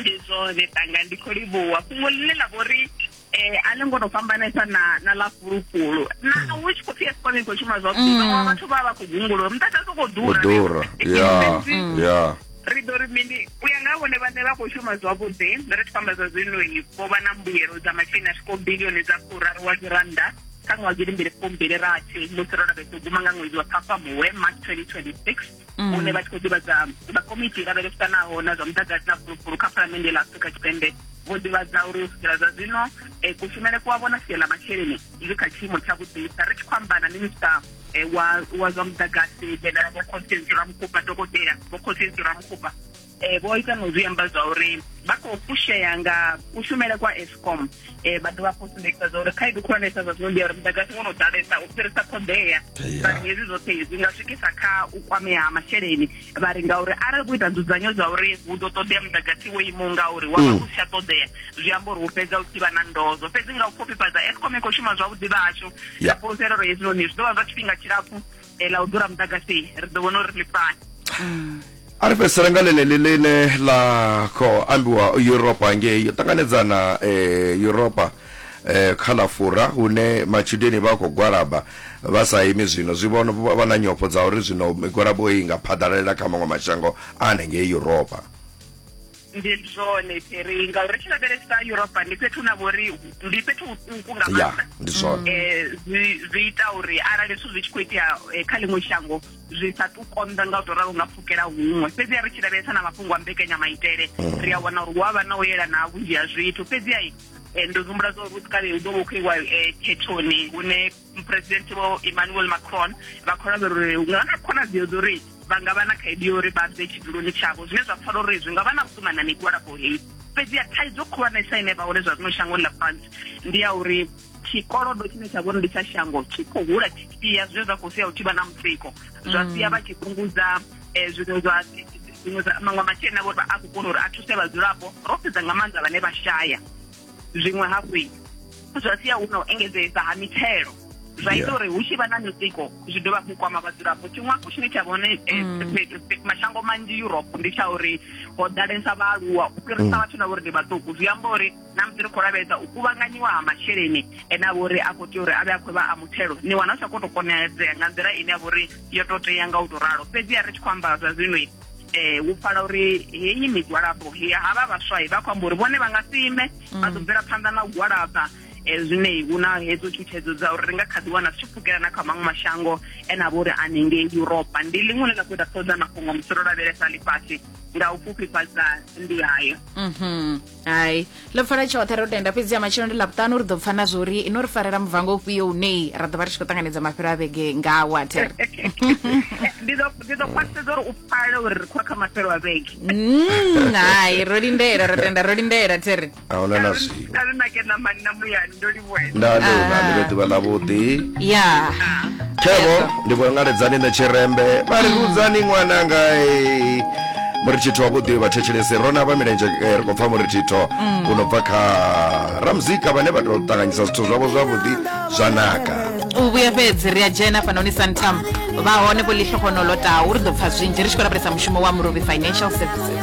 ndi zwone tanga ndi khou livhuwa fhungo ḽine ḽa vhori eh a ḽi ngo to fhambanesa na na ḽa fhulufhulu na mm. hu tshi khou pfi escom i khou shuma zwavhuḓi mm. vhaṅwe vhathu vha vha khou gungulula muḓagasi u khou ḓura ḓura ya ya ri ḓo ri mini u ya nga vhone vhane vha khou shuma zwavhuḓi ri tshi fhamba zwa zwinoi vho vha na mbuyelo dza masheleni a swikaho bilioni dza furaru wa dzirannda kha ṅwaha gidi mbili fumbili rathi musi ro lavhesa u guma nga ṅwedzi wa ṱhafamuwe march 2026 mm. hune vha tshi khou ḓivhadza vhakomiti lavhelesanaho na zwa muḓagasi na fulufulu kha phalamennde ḽa afrika tshipembe vho ḓivhadza uri u swikela zwa zwino um kushumele ku a vhona sia ḽa masheleni zwi kha tshiimo tsha vhuḓisa ri tshi khou amba na minista eh, wa zwa muḓagasi dzhenela vho constance ramukupa dokotela vho constance ramukupa e, vho ita no zwi amba zwa uri vha khou fushea nga kushumele kwa escom um eh, vha dovha khou sumbekisa zwa uri khaedu khulwanesa zwa zwino ndi ya uri mudagasi wo no ḓalesa u fhirisa ṱhoḓea vhari hezwi zwoṱhe zwi nga swikisa kha u kwamea ha masheleni vha ri ngauri arali vho ita nzudzanyo zwa uri hu ḓo ṱoḓea mudagasi wo imaho ngauri wa vha mm. u si tsha ṱoḓea zwi amba uri hu fhedza u tshivha na ndozo fhedzi nga u khofhifhadza escom i khou shuma zwavhuḓi vhashu ya fhulufhelo ro hezwinoni zwi ḓo vha zwa tshifhinga tshilapfu eh, la u ḓura muḓagasi ri ḓo vhona uri ḽi fani a ri fhedzisela nga ḽeneḽi ḽine ḽa khou ambiwa europa ngei yo ṱanganedzana um europa eh, kha ḽa fura hune matshudeni vha khou gwalaba vha sa imi zwino zwi vhono vha na nyofho dza uri zwino migwalabo i nga phaḓalalela kha maṅwe mashango a hanengei europa ndi zwone peri ngauri ri tshi lavhelesa europa ndi fhethu na vhori ndi fhethu huṱuku nga maanḓa ndi zwone eh, zwi ita uri arali zwithu zwi tshi khou itea eh, kha ḽiṅwe shango zwi sa tu konḓa nga u tou ralo nga pfukela huṅwe fhedzi a ri tshi lavhelesa na mafhungo a mbekanyamaitele mm. ri a wana uri hu a vha na u yelana ha vhunzhi ha zwithu fhedzi ai eh, ndo humbula zwa uri u ḓo vha u khou iwa khethoni hune muphuresidennde vho emmanuel macron vha khou lavhelela uri hu nga na khonadzeo dza uri vha nga vha na khaedu yo uri vha bve tshiduloni tshavho zwine zwa pfala uri zwi nga vha na vhukuma na migwalabo heyi fhedzi ya thaidzo khulwanesa ine vha hone zwa zwino shangoni ḽa france ndi ya uri tshikolodo tshine tsha vhori ndi tsha shango tshi khou hula tshi sia zwine zwa khou sia u tshi vha na mutsiko zwa mm. sia vha tshi fhungudza um zwiṅwe zwa zwiṅwe maṅwe masheleni avho vha a khou kona uri a thuse vhadzulapo ro sedza nga maanḓa vhane vha shaya zwiṅwe hafhu zwa sia hu na u engedzesa ha mithelo zwa ita uri hu tshi vha na mitsiko zwi dovha hafhu kwama vhadzulapo tshiṅwe hafhu tshine tsha vhone eh, mm. mashango manzhi europe ndi tsha uri ho ḓalesa vhaaluwa u fhirisa mm. vhathu na vhori ndi vhaṱuku zwi amba uri na musi ri khou lavhelesa u kuvhanganyiwa ha masheleni ene a vhori a khou tea uri a vhe a khou vha a muthelo ni wana u sa khou tou konadzea nga nḓila ine ya vhori yo tou tea nga u tou ralo fhedzi ya ri tshi khou amba zwa zwino eh u pfala uri heyi migwalabo ya havha vhaswa vha khou amba uri vhone vha nga si ime vha ḓo mm. bvela phanḓa na u gwalaba eh, zwine hu na hedzo tshutshedzo dza uri ri nga kha ḓi wana zwi tshi pfukela na kha maṅwe mashango ene a vha uri anengei europa ndi ḽiṅwe ḽe ḽa khou ita ṱhoḓa mafhungo musi ro lavhelesa ḽifhasi nga u fhufhifhadza ndi hayo mhm. hai ḽo pfala tshoṱhe ro tenda fhedzi ya matshelo ndi ḽavhuṱanu ri ḓo pfa na zwo uri ino ri farela muvango ufhio une ra ḓo vha ri tshi khou ṱanganedza mafhelo a vhege nga water ndi ḓo khwaṱhisedza uri u pfale uri ri khou kha mafhelo a vhege mm, hai ro lindela ro tenda ro lindela there ahuna na zwiwe nda ni na ni vhe ḓuvha ḽavhuḓi ya khevo ndi vho ngaledzani na tshirembe vha ri vhudzani ṅwananga eh. muri tshitho wavhuḓi vhathetshelesi ro na vha milenzhe eh, ri khou pfa muri tshitho u no bva kha ramuzika vhane vha tou ṱanganyisa zwithu zwavho zwavhuḓi zwa naka u vhuya fhedzi ri a dzhena fhanoni santam vha hone vho lihlohonolo tau ri ḓo pfa zwinzhi ri tshi khou lavhelesa mushumo wa murovi financial services